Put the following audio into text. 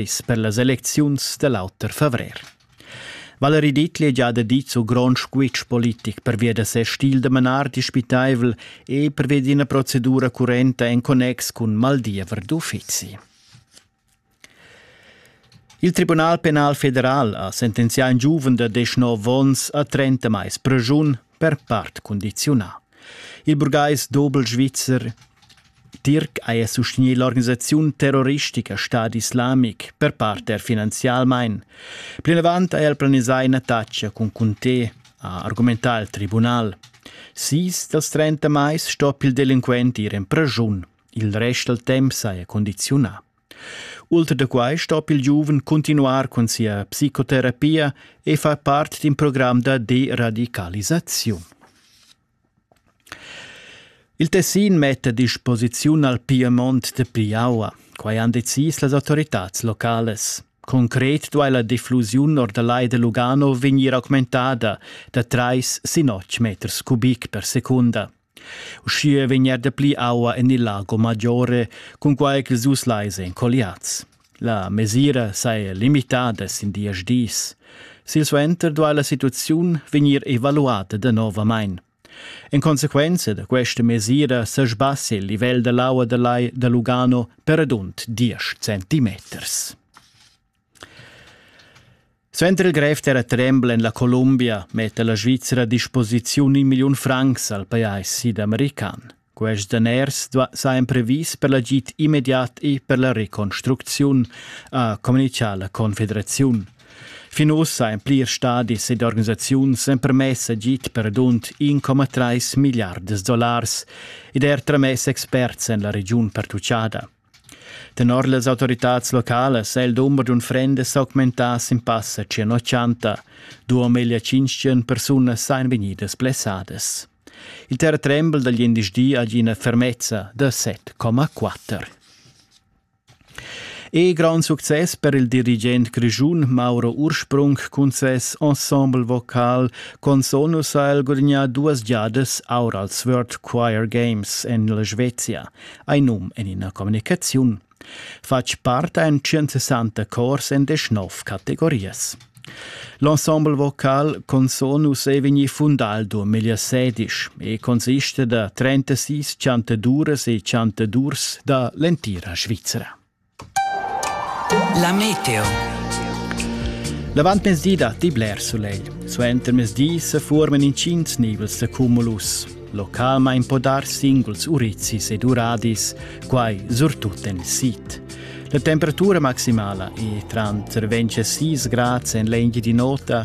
dis per las elecziuns da l'auter favrer. Valerie Dietli già da dit su grond squitsch politic pervia da ses stil da manar dispitaivel e pervia d'ina procedura currenta en connex cun maldiever d'uffizi. Il Tribunal penal federal ha sentenzià in giuven da 19 onns a 30 mais pregiun per part cundiziunà. Il burgais dobel svizzer Tirc haja sustegni l'organisaziun terroristica Stad Islamic per part er finanzialmain. Plinavant ha el planisà ina taccia cun Conté, ha argumentà il tribunal. Sis dals 30 mais sto il delinquent ir en preschun. Il rest dal temp saja condiziunà. Ultra da quai stoppi il giuven cuntinuar cun sia psicoterapia e far part d'in program da deradicalisaziun. Il Tessin metta a disposiziun al Piemont de Piaua. Quai han decis las autoritads locales. Concret duai la diffusiun or da Lai de Lugano vegnir augmentada da trais sin otg meters cubic per secunda. Uschia vegnia dapli aua en il Lago Maggiore, cunquai ch'ils dus lais èn colliads. La mesira saja limitada sin diesch dis. Silsuenter duai la situaziun vegnir evaluada danovamain. En consequenza da questa mesira sa sbassia il livel da l'aua da lai da Lugano per radund diesch centimeters. Suenter il grev terratrembel en la Columbia metta la Svizra a disposiziun in milliun francs al pajais sidamerican. Quest daners sa emprevis per l'agid immediat e per la reconstrucziun, ha communitgà la Confederaziun. Fin ussa en plirs stadis ed organisaziuns empermess agid per dunt 1,3 milliards dollars ed er tramess experts en la regiun pertutgada. Tenor las autoritads localas è il dumber d'unfrendas s'augmentà sin passa tschient ochanta. Duo meglio tschintg persunas sajan vegnidas blessadas. Il terratrembel dal glindesdi ha ina fermezza da 7,4. E grand success per il dirigent grischun Mauro Ursprung cun ses ensemble vocal Consonus ha el gudagnà duas giadas aur als World Choir Games en la Svezia. ei num en ina communicaziun. Fatg part ein 160 cors en deschnov categorias. L'ensemble vocal Consonus è vegni fundal duemila sedisch e consiste da 36 chantaduras e chantadurs da l'entira Svizzera. La meteo. L'avantmezdi datti bler sulegl. Suenter mezdi se forman intgins nivels da cumulus. Localmain po dar singuls urizis ed uradis, quai surtut en il sid. La temperatura maximala è tranter 26 grads en l'engi di nota